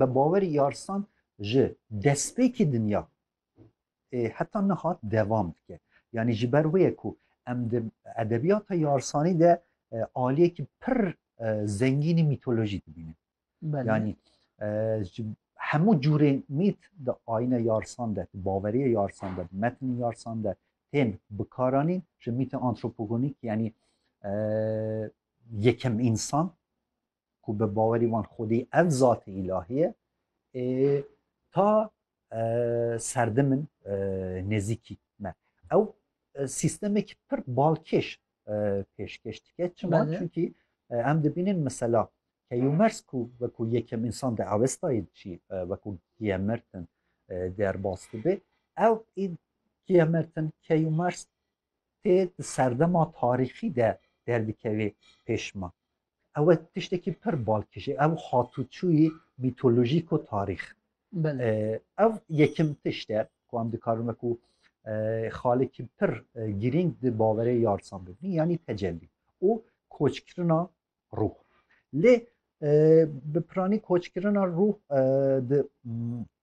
Bi bawerî Yarsan ji destpêkî dinya ê heta niha devam dike. Yanî ji ber wê ye ku em di edebiyata Yarsanî de e, aliyekî pir e, zengînî mîtolojî dibînin. Yanî e, ji hemû cûrên mît di ayîna Yarsan de, di baveriya Yarsan de, di metnên Yarsan de tên bikaranîn ji mîtê antropogonîk yanî e, yekem însan ku bi bawerî wan xwedî ev zatê îlahî ye ê ta serdim in nêzîkî me ew sîstemekî pir balkêş pêşkêş dike çima çunkî em dibînin mesela keyûmers ku wekû yekem însan di ewestayê çî wekû giyemertin derbas dibe ew ê giyemertin keyûmers tê di serdema tarîxî de derdikevê pêşma Ew e tiştekî pir balkêşî, ew hatûçûyî mîtolojîk û tarîx. Ev yekim tişt e ku em dikarin wekû xalikî pir girîng di baverê yarsan bibîn yanî tecellî û koçkirina rûh. Lê bi piranî koçkirina rûh di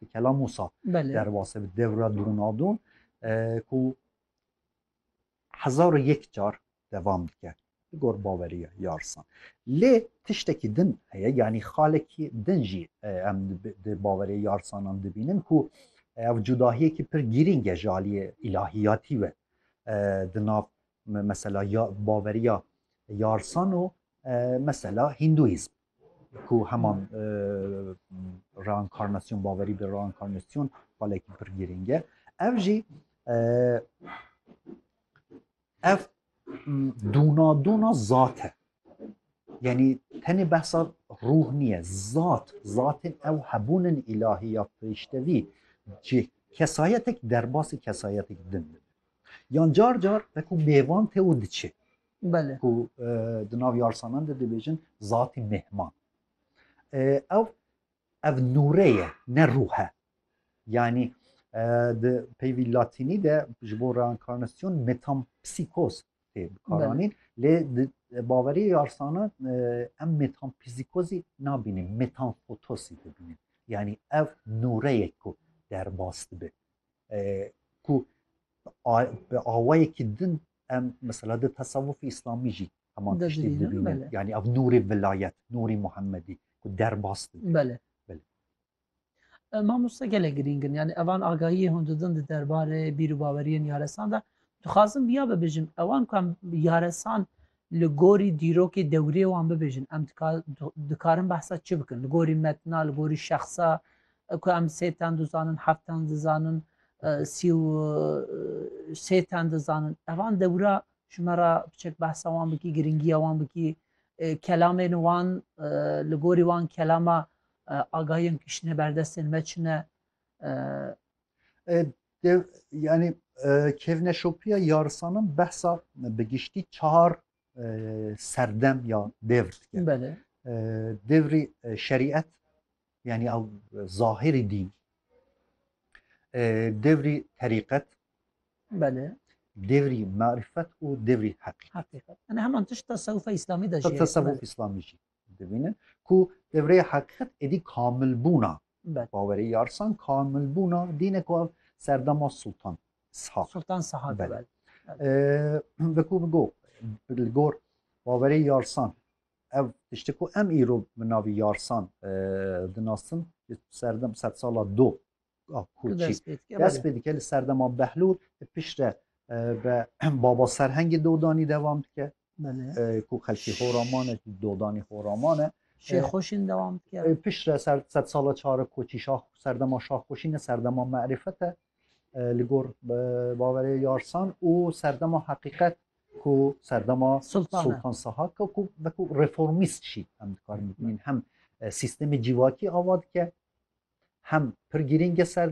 Di kela Musa derbase bi devra donadon ku hezar û yek car devam dike li gor baweriya yarsan. Lê tiştekî din heye yanî xalekî din jî em di baweriya yarsanan dibînin ku ev cudahiyekî pir girîng e ji aliyê îlahiyatî ve di nav Mesela ya baveriya yarsan û mesela hîndûîzm ku heman reinkarnasyon baverî bi reinkarnasyon xalekî pir girîng e. Ev jî ev dûnadûna zat e. Yanî tenê behsa ruh niye, zat, zatên ew hebûnin îlahî ya firîştevî cih kesayetek derbasî kesayetek din dibin. Yan car car wekû mêvan tê û diçe. Belê. Ku e, di nav yarsanan de dibêjin zatî mêhman. E, ew ev nûre ye ne rûh e. Yanî e, di peyvî latînî de ji bo reinkarnasyon metampsîkoz tê bikaranîn lê di baweriyê yarsanan em metampsîkozî nabînin metanfotosî dibînin. Yanî ev nûre ye ku derbas dibe. ku bi awayekî din em mesela di tesewufî îslamî jî heman tiştî dibînin yanî ev nûrê vilayet nûrê Muhemmedî ku derbas bile mamosta gelek girîng in yani evan agahiyê hûn didin di derbarê bîr û baweriyên yaresan de dixwazim viya bibijim ewan ku em yaresan Li gorî dîrokê dewriyê wan bibêjin em dikarin behsa çi bikin? Li gorî metna, li gorî şexsa ku em sê ten dizanin, heft ten dizanin, sî û sê ten dizanin. Evan dewra ji me re biçek behsa wan bikî, girîngiya wan bikî, kelamên wan li gorî wan kelama agahiyên kiştine berdestên me çi ne? Dev, yani e, kevneşopiya yarsanan behsa bi giştî çar e, serdem ya devr dike. Belê. E, devrî e, şerîet yani ew zahirî dîn. E, devrî terîqet, Belê. devrî marifet û devrî heqîqet. Hakîqet. Yani heman tişt tasavvufa İslamî de Ta jî. tasavvuf Belê. İslamî jî. dibînin ku tevreya heqîqet êdî kamilbûna bawerê yarsan kamilbûna dîne ku ev serdema Sultan Sihak Sultan Sihak veku go li gor bawerê yarsan ev tişti ku em îro bi navî yarsan dinastin serdem sed sala do Ku dest pê dike. Dest pê dike li serdema Behlûl piştre be Baba Serhengê dodanî devam dike. Ku xelkê Horaman e, dodanî Horaman e. Şêxweşîn devam dike. Piştre ser sed sala çar e koçî şax serdema şaxweşîn e, serdema merîfet e li gor baverê yarsan û serdema heqîqet ku serdema Sultan Sahak ku vekû reformîst jî em dikarin bibînin hem sîstemê cîvakî ava dike hem pir girîng e ser